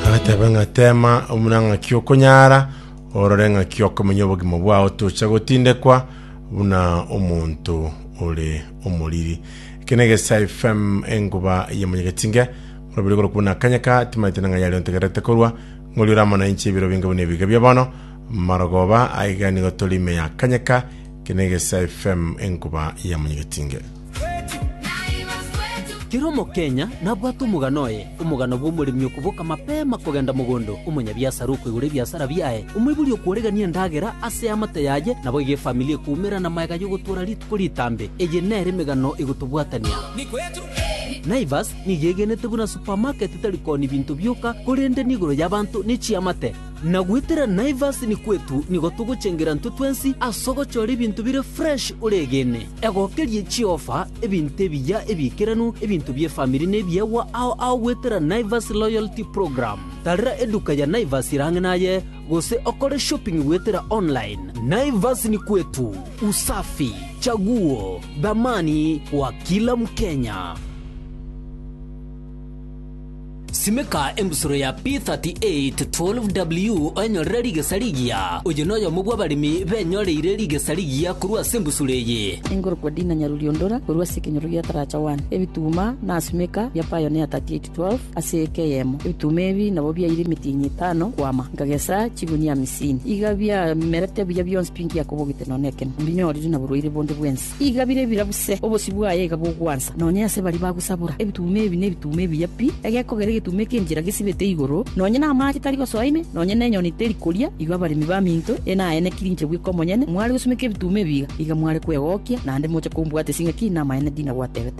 agateba ng'a teema buna ng'aki okonyara, orore ng'aki okomenya obogima bwao tocha gotindekwa buna omonto ore omoriri. Eke na Egesae FM enkuba ya Monyagetinge, orobiri korokwa buna akanya ka, timaete na ng'a yaria ontegererete korwa, ng'ori ore amo nainche ebiro binge buna ebiga bia bono, marogoba, aiga nigo tore ime ya akanya ka, eke na Egesae FM enkuba ya Monyagetinge. Kera omokenya nabwate omogano oye, omogano bw'omoremi okoboka mapema kogenda mogondo, omonyabiasara okoigora ebiasara biaye, omoibori okworegania endagera ase eamate yaye, naboigo efamili ekoumera namaega y'ogotoora rituko ritambe. Eye nere emegano egotobwatania. Naivas nigo egenete buna supamaketi tari kooni binto bioka, korende nigoro y'abanto ne chiamate. Na goetera Naivas ni kwetu nigo togochengera intwe twensi ase ogochora ebinto bire fresh oregene. Egokerie chiofa, ebinto ebiya ebiikeranu, ebinto bi'efamiri nebiegwa ao ao goetera Naivas Loyalty Program. Tarera eduka ya Naivas ere ang'e naye gose okore shopping goetera online. Naivas ni kwetu, usafi, chaguo, dhamani kwa kila mkenya. Simeka engusuro ya P3812W onyorere rigesa rigiya. Oyo noyomo bw'abaremi benyoreire rigesa rigiya korwa ase engusuro eye. Engorokwa Dina Nyaruriondora korwa ase ekenyoro gia Taracha One. Ebituma na simeka bia Pioneer 3812 ase eke eyemo. Ebituma ebi nabo biaire emetienyi etano kwama, nkagesa chigunia amisini. Iga biamerete buya bionsi bingiakobogete nonya nekemo, mbinyorire naborwaire bonde bwensi. Iga bire ebirabu se, obosio bwaye iga bogwansa, nonya ase baria bagosabora, ebituuma ebi nebituuma ebiya pi, egekogera egetuuma ekenchera gesibete igoro, nonya namaache tari gosoa ime, nonya nenyoni teri koria, igo abaremi baminto eye naye nekirinche bweka omonyene, mware gosumeka ebituuma ebi iga, iga mware kwegokia, naende moche kombwata ase ng'aki namaene ndinagwatebete.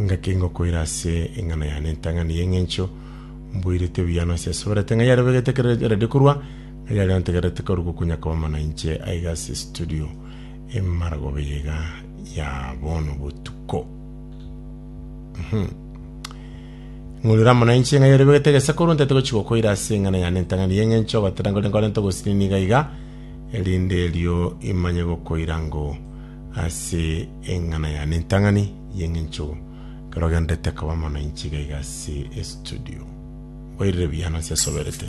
Ngaki ngokoira ase eng'ana yane entang'ani y'eng'encho mboirete buya na ase asoberete ng'a yarebegete ekero yaredia korwa, ng'a yaria ntegererete koru gokonya koba mana inche aiga ase estudio emaragoba eye iga ya bono botuko. Uhum. Ng'urire amo nainche ng'a yarebegete egesakoru ntaete gochi gokoira ase eng'ana yane entang'ani y'eng'encho obatera nkore nkorente ogosinini iga iga, erinde erio imanye gokoira ngo Ase eng'ana yane entang'ani y'engencho ekero ogenderete koba mono inchiga iga ase estudio. Mboirire buya nonsi asoberete.